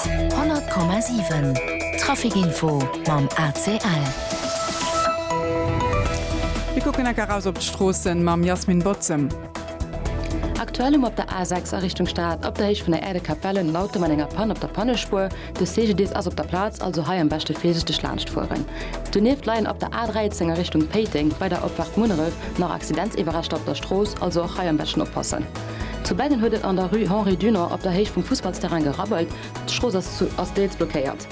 100,7 Traficinfo mam ACL. Mir kucken enk eraus op d'Stroossen mam Jasmin Bozem. Aktuell hu mer op der A6 a Richtung Stad op der Héicht vun der Aire de Capellen en Auto mat enger Pann op der Pannespuer. De CGDIS ass op der Plaz, also hei am beschte virsichteg laanscht fueren. Donieft leien op der A13 a Richtung Péiteng bei der Opfahrt Munneref nach Accidentsiwwerreschter op der Strooss, also och hei am beschten oppassen. Zu Beggen huet et an der Rue Henri Dunant op der Héicht vum Fussballsterrain gerabbelt. D'Strooss ass deels blockéiert.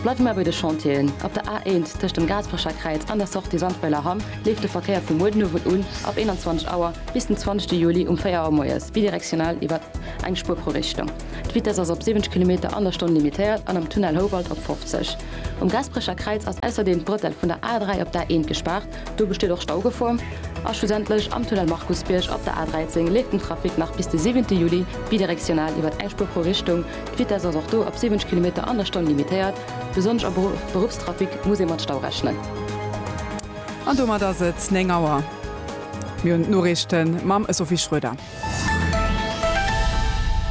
Bleiwe mer bei de Chantieren. Op der A1 tëscht dem Gaasperecher Kräiz an der Sortie Sandweiler Hamm leeft de Verkéier vu muer den Owend un ab 21 Auer bis den 20 Juli um 4 Auer moies bidirektional iwwer eng Spuer pro Richtung. D'Vitess ass op 70 Kilometer an der Stonn limitéiert an am Tunnel Houwald op 50. Um Gaasperecher Kräiz ass ausserdeem d'Bretell vun der A3 op d'A1 gespaart. Do besteet och Staugefor. A schlussendlech am Tunnel Markusbierg op der A13 leeft den Trafic nach bis de siwente Juli bidirektional iwwert eng Spuer pro Richtung. D'Vitess ass och do op 70 Kilometer an der Stonn limitéiert. Besonnesch am Beruffstrafic muss ee mat Stau rechnen. An domat ass et 9 Auer. Mir hunn d'Noriichten mam Sophie Schroeder.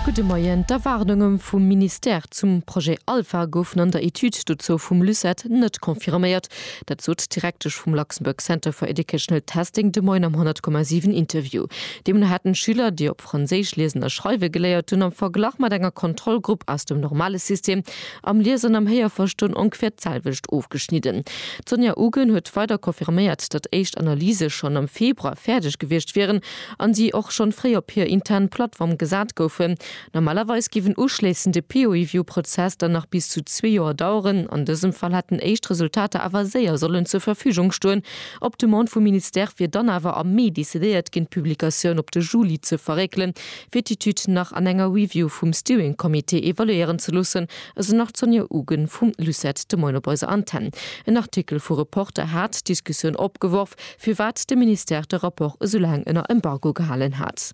Gudde Moien. D'Erwaardunge vum Ministère zum Projet Alpha goufen an der Etüd dozou vum LUCET net confirméiert. Dat sot d'Direktesch vum Luxembourg Center for Educational Testing de Moien am 100,7 Interview. Deemno hätten d'Schüler, déi op Franséisch liesen a schreiwe geléiert hunn, am Verglach mat enger Kontrollgrupp aus dem normale System am Lies an am Héierverstoen ongeféier d'selwecht ofgeschnidden. D'Sonia Ugen huet weider confirméiert, datt éischt Analyse schonn am Februar fäerdeg gewiescht wieren a si och schonn fréi op hir intern Plattform gesat goufen. Normalerweis géif en uschléissende Peer-Review-Prozess dann nach bis zu zwee Joer daueren. An dësem Fall hätten éischt Resultater awer séier sollen zur Verfügung stoen. Op Demande vum Ministère wier dann awer am Mee decidéiert ginn, d'Publikatioun op de Juli ze verréckelen, fir d'Etüd nach an enger Review vum Steering Committee evaluéieren ze loossen, esou nach d'Sonja Ugen vum LUCET de Moien op eiser Antenn. En Artikel vu Reporter hat d'Diskussioun opgeworf, firwat de Ministère de Rapport esou laang ënner Embargo gehalen hat.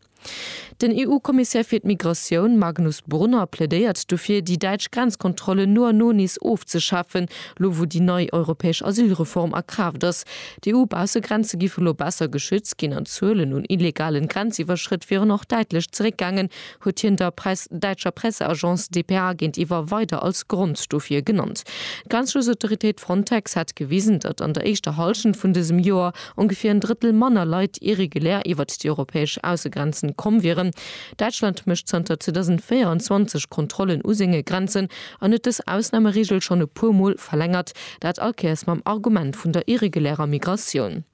Den EU-Kommissär fir d'Migratioun, Magnus Brunner, plädéiert dofir, déi däitsch Grenzkontrollen no an no nees ofzeschafen, lo wou déi nei europäesch Asylreform a Kraaft ass. D'EU-Baussegrenze giffen elo besser geschützt ginn an d'Zuelen un illegalen Grenziwwerschrëtt wieren och däitlech zeréckgaangen, huet hien der däitscher Presseagence dpa géintiwwer weider als Grond dofir genannt. D'Grenzschutzautoritéit Frontex hätt gewisen, datt an der éischter Hallschent vun dësem Joer, ongeféier en Drëttel manner Leit irregulär iwwert déi europäesch Aussegrenzen komm wieren. Däitschland mécht zanter 2024 Kontrollen u senge Grenzen an huet dës Ausnameregel schonn e puer Mol verlängert, dat all Kéiers mam Argument vun der irregulärer Migratioun.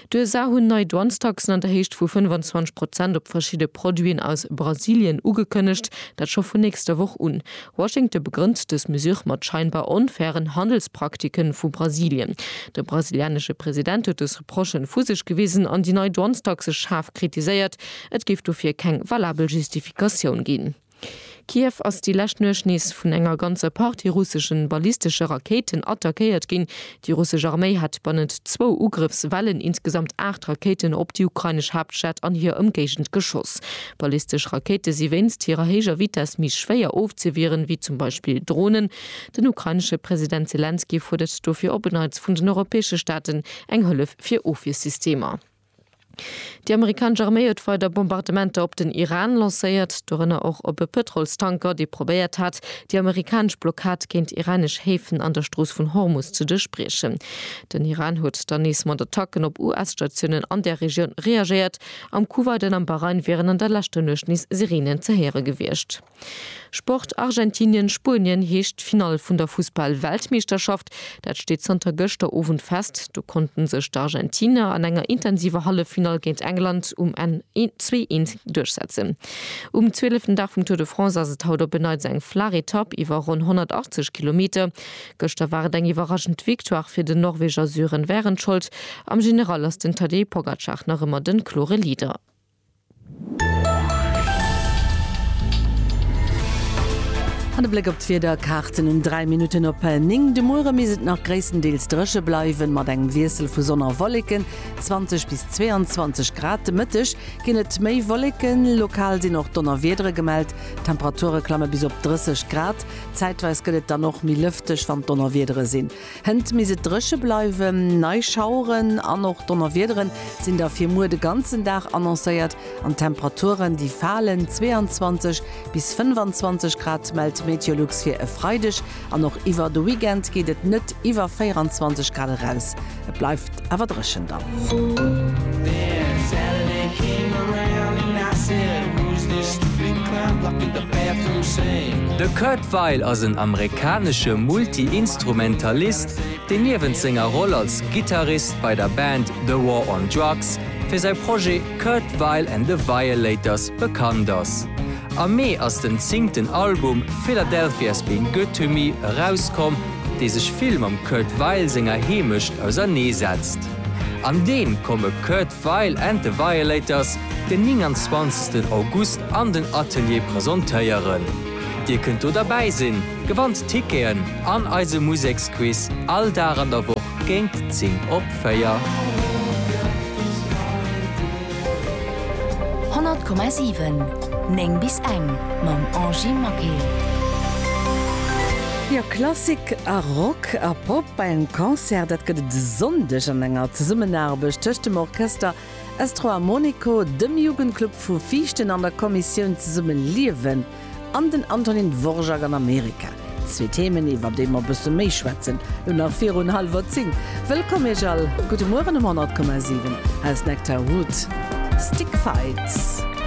D'USA hunn nei Douanestaxen an der Héicht vu 25 Prozent op verschidde Produiten aus Brasilien ugekënnegt, dat scho vun nächster Woch un. Washington begrënnt dës Mesure mat scheinbar onfairen Handelspraktiken vu Brasilien. De brasilianesche President huet dës Reprochen vu sech gewisen an déi nei Douanestaxe schaarf kritiséiert. Et géif dofir keng valabel Justifikatioun ginn. Kiew ass déi lescht Nuecht nees vun enger ganzer Partie russeschen ballistesche Rakéiten attackéiert ginn, Déi russesch Arméi hat bannent zwou Ugrëffswellen insgesamt aacht Rakéiten op déi ukrainesch Haaptstad an hir Ëmgéigend geschoss. Ballistesch Rakéite si wéinst hirer héijer Vitess méi schwéier ofzewieren, wéi zum Beispill Dronen. Den ukrainesche President Selenskyj fuerdert dofir op en Neits vun den europäesche Staaten eng Hëllef fir Ofwiersystemer. Déi amerikanesch Arméi huet weider Bombardementer op den Iran lancéiert, dorënner och op e Pëtrolstanker, dee probéiert hat, déi amerikanesch Blockad géint iranesch Häfen an der Strooss vun Hormus ze duerchbriechen. Den Iran huet dann nees mat Attacken op US-Statiounen an där Regioun reagéiert. Am Kuwait an am Bahrain wieren an der leschter Nuecht nees Sireenen ze héiere gewiescht. Sport, Argentinien, Spuenien heescht d'Finall vun der Fussball-Weltmeeschterschaft. Dat steet zanter gëschter Owend fest. Do konnte sech d'Argentiner an enger intensiver Halleffinall géint England um Enn een zwee eent duerchsetzen. Um zwieleften Dag vum Tour de France ass et haut op en Neits eng flaach Etapp iwwer ronn 180 Kilometer. Gëschter war et eng iwwerraschend Victoire fir den Norweger Sören Wærenskjold. Am General ass den Tadej Pogacar nach ëmmer de klore Leader. An e Bléck op d'Wiederkaarten um 3 Minutten op 9 de Muere misst et nach gréisstendeels dréche bleiwen, mat engem Wiessel vu Sonn a Wolleken, 20 bis 22 Grad. De Mëtteg ginn et méi Wolleken, lokal sinn och Donnerwiedere gemellt. D'Temperature klamme bis op 30 Grad, zäitweis gëtt et dann och méi lëfteg, wann d'Donnerwiedere sinn. Hënt misst et dréche bleiwen, nei Schaueren an och Donnerwiederen sinn da fir muer de ganzen Dag annoncéiert an d'Temperaturen déi falen, 22 bis 25 Grad mellt Meteolux fir e Freideg an och iwwer de Weekend geet et net iwwer 24 Grad eraus. Et bleift. awer dréchen dann. De Kurt Weill ass en amerikanesche Multi-Instrumentalist, deen niewent senger Roll als Gittarist bei der Band The War on Drugs fir säi Projet Kurt Weill and the Violators bekannt ass. Am Mee ass den zéngten Album Philadelphia's Been Good to Me erauskomm, dee sech vill mam Kurt Weill senger Heemecht ausernee setzt. An deem komme Kurt Weill and the Violators den 29 August an den Atelier presentéieren. Dir kënnt do derbäi sinn, gewannt Ticketen an eise Museksquiz all Dag an der Woch géint 10 op 4. 100,7 9 bis eng mam Angy Maquet. Jo Klassik a Rock a Pop bei engem Concert, dat gëtt et e Sonndeg an enger Zesummenaarbecht tëscht dem Orchester Estro Armonico, dem Jugendclub vu Viichten an der Kommissioun Zesumme Liewen. An den Antonin Dvorak an Amerika. Zwee Themen, iwwer déi mer e bësse méi schwätzen, lo nach virun hallwer zéng. Wëllkomm Iech all. Gudde Mueren um 100,7 aus Nectar Wood. Stick Fights.